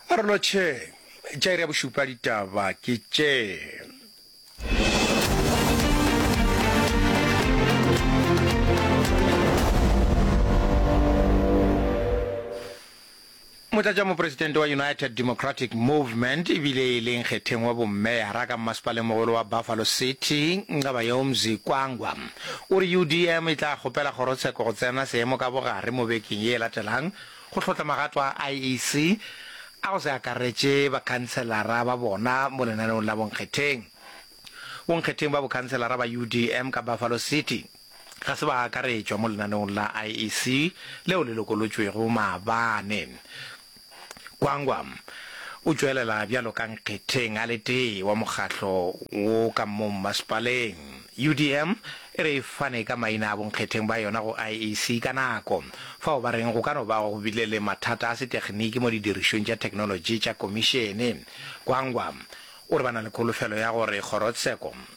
A re no tšhe, tša iri ya bošupa ditaba ke tše. motlatšamopresidente wa united democratic movement ebile e leng kgetheng wa bommeyara ka mmasepaleng mogolo wa buffalo city nqabayomzi kwangwa O re UDM e tla kgopela kgorotsheko go tsena seemo ka bogare mo bekeng ye e latelang go hlotla magato a IEC a go se akaretše bakhanselara ba bona mo lenaneong la bonkgetheng. Bonkgetheng ba bokhanselara ba UDM ka Buffalo City ga se ba akaretšwa mo lenaneong la IEC leo le lokolotšwego maabane. Gwangwa o tšwelela bjalo ka nkgetheng a le tee wa mokgatlo wo ka mo mmasepaleng. UDM e re e fane ka maina a bonkgetheng ba yona go IEC ka nako, fao ba reng go ka no ba go bile le mathata a setekniki mo didirišong tša theknolotši tša komišene. Gwangwa o re ba na le kholofelo ya gore kgorotsheko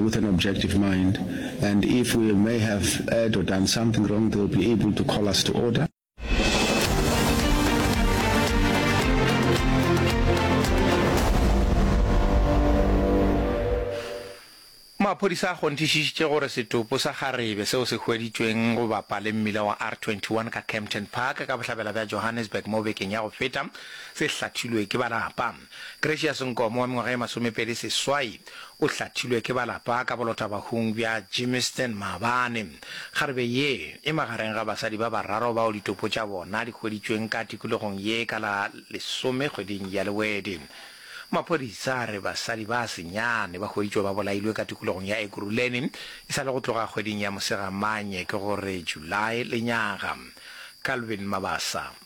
with an objective mind and if we may have erred or done something wrong they will be able to call us to order. Maphodisa a kgonthišišitše gore setopo sa kgarebe seo se hweditšweng go bapa le mmila wa R21 ka Kempton Park ka bohlabela bja Johannesburg mo bekeng ya go feta se hlathilwe ke ba lapa. Gracious Nkomo wa mengwaga e masomepedi seswai o hlathilwe ke ba lapa ka bolotabahung bja Gymiston maabane. Kgarebe ye e magareng ga basadi ba bararo bao ditopo tša bona di hweditšweng ka tikologong ye ka la lesome kgweding ya Lewedi. Maphodisa a re basadi ba senyane ba hweditšwe ba bolailwe ka tikologong ya Ekurhuleni e sa le go tloga kgweding ya Mosegamanye ke go re July lenyaga. Calvin Mabasa.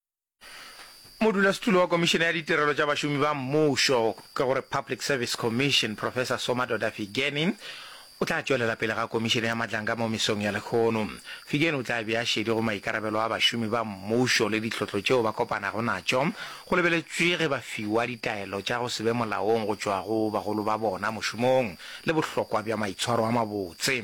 Modulasetulo wa Komišene ya Ditirelo tša Bašomi ba Mmušo ke go re Public Service Commission, Professor Somadoda Figeni, o tla tšwelela pele ga Komišene ya Matlanka mo mesong ya lehono. Figeni o tla bea šedi go maikarabelo a bašomi ba mmušo le ditlhotlo tšeo ba kopanago natšo, go lebeletšwe ge ba fiwa ditaelo tša go se be molaong go tšwa go bagolo ba bona mošomong le bohlokwa bja maitshwaro a mabotse.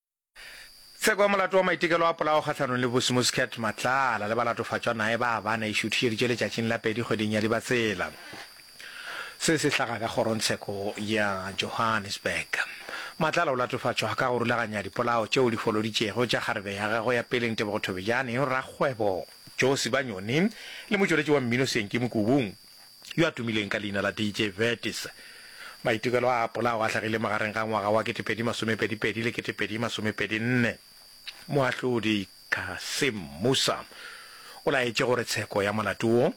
Tsheko ya molato wa maitekelo a polao kgahlanong le Busi Muscat Matlala le balatofatšwa nae ba bana e šuthišeditše letšatšing la pedi kgweding ya Dibatsela. Se se hlaga ka kgorongtsheko ya Johannesburg. Matlala o latofatšwa ka go rulaganya dipolao tšeo di foloditšego tša kgarebe ya gagwe ya pele Ntebogo Thobejane, rakgwebo Joe Sibanyoni le motšweletši wa mmino Senki Mokubung. yo a tumileng ka leina la DJ Vertis. Maitekelo a apola ao a hlagile magareng ga ngwaga wa 2022 le 2024. Moahlodi Kassim Musa o laetše gore tsheko ya molato wo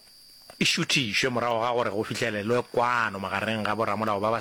e šuthišwe morago ga gore go fihlelelwe kwano magareng ga boramolao ba ba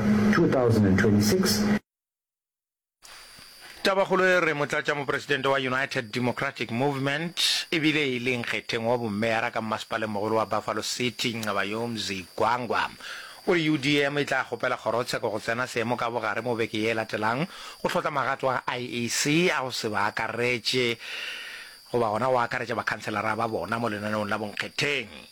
2026. Tabakgolo e re Motlatšamopresidente wa United Democratic Movement e bile e le nkgetheng wa bommeara ka mmasepalengmogolo wa Buffalo City, Nqabayoo Mzigwangwa o re UDM e tla kgopela kgorotsheko go tsena seemo ka bogare mo beke ye e latelang go hlotla magato a IEC a go se ba akaretše goba gona go akaretša bakhanselara ba bona mo lenaneong la bonkgetheng.